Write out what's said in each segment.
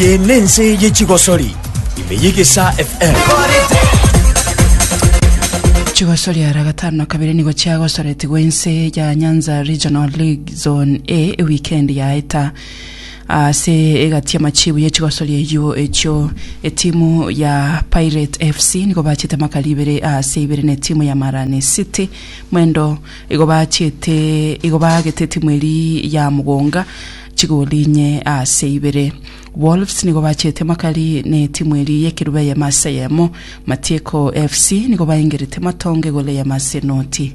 Eye nense ye chigosori ime y'egesaa FM. Chigosori ara gatano na kabere nigo chiagosoretigwe inse ya Nyanza Regional League Zone A ewikendi yaeta. Ase egati y'amachibu ye chigosoria eyio echio, etimu ya Pirate FC nigo bachete amakali ibere ase ibere na etimu ya Marani City mwendo, igo bachete igo baagete etimu eri ya Mugunga chigoli inye ase ibere. Wolves nigo bachete amakali ne etimu eri y'ekerubi ayemo ase ayemo. Matieko FC nigo baengerete matongo egolo eyemo ase enoti.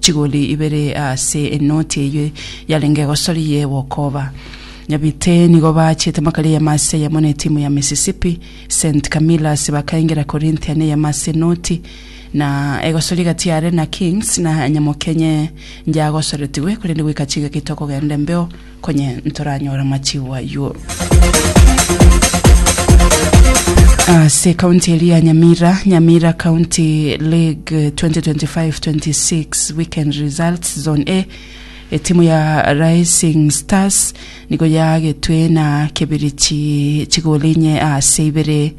Chigori ibere ase enoti eyio yarenge egosori y'egokoba. Nyabite nigo bachete makari eyemo ase eyemo ne timu ya Mississippi, Saint Camillers bakaengera Corinthian eyemo ase enoti, na egosori gati yare na Kings na Nyamokenye nyagosoretigwe korende goika chigaki tokogenda embeo, Konye ntoranyore amachigo ayio. Ase county eria ya Nyamira, Nyamira County League 2025-26 weekend results, Zone A, etimu ya Rising Stars nigo yagetwe na Kibirichi chigolo inye ase ibere.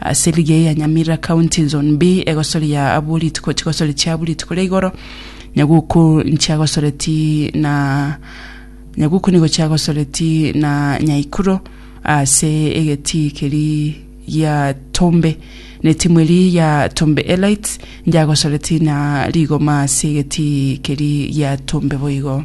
Ase ligi eye ya Nyamira County Zone B, egosori ya abwo rituko chigosori chiabwo rituko ria igoro, Nyaguku nchiagosoreti na Nyaguku nigo chiagosoreti na Nyaikuro ase egetii keri gia Tombe. Ne timu eri ya Tombe Elites njagosoreti na rigoma ase egetii keri gia Tombe boigo.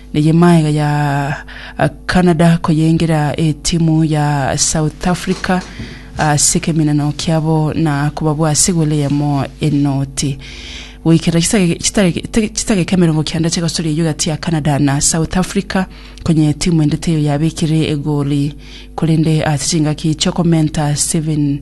Neye maega ya Canada koyengera etimu ya South Africa ase ekeminano kiabo na kobabua ase goal eyemo enoti. Goikera chisake- chitake- te- chidakika emerongo kenda chi'egosoria eyio egati ya Canada na South Africa, konya etimu ende teiyo yabekire egoli korende ase chingaki chi'okomenta Steven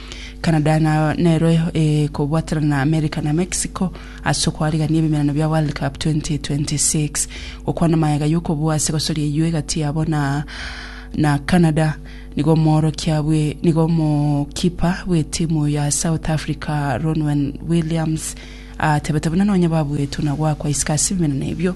Canada nayo nero ekobwaterana na America na Mexico ase okoarigania ebimerano bia World Cup 2026. Gokwana magega y'okobua ase egosoria eyio egati yabo na na Canada nigo omoorokia bwe nigo omokipa bw'etimu ya South Africa Ronwen Williams atebete buna nonye babuetwe na goakwa isiko ase ebimerano ebio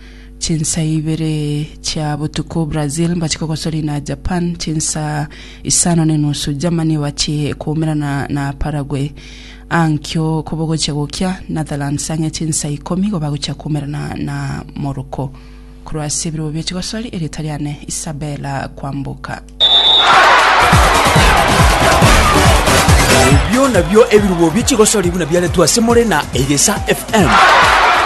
Chinsa ibere chia botuko Brazil mbache kogosori na Japan, chinsa isano ne nusu Germany ebache koumerana na Paraguay. Aa nkio kobogochia gokia Netherlands ang'e chinsa ikomi igo bagochia koumerana na Morocco. Korwa ase ebirobo bie chigosori erieta riane Isabella Kwamboka. Ebio nabio ebirobo bie chigosori buna biaretwe ase more na Egesa FM.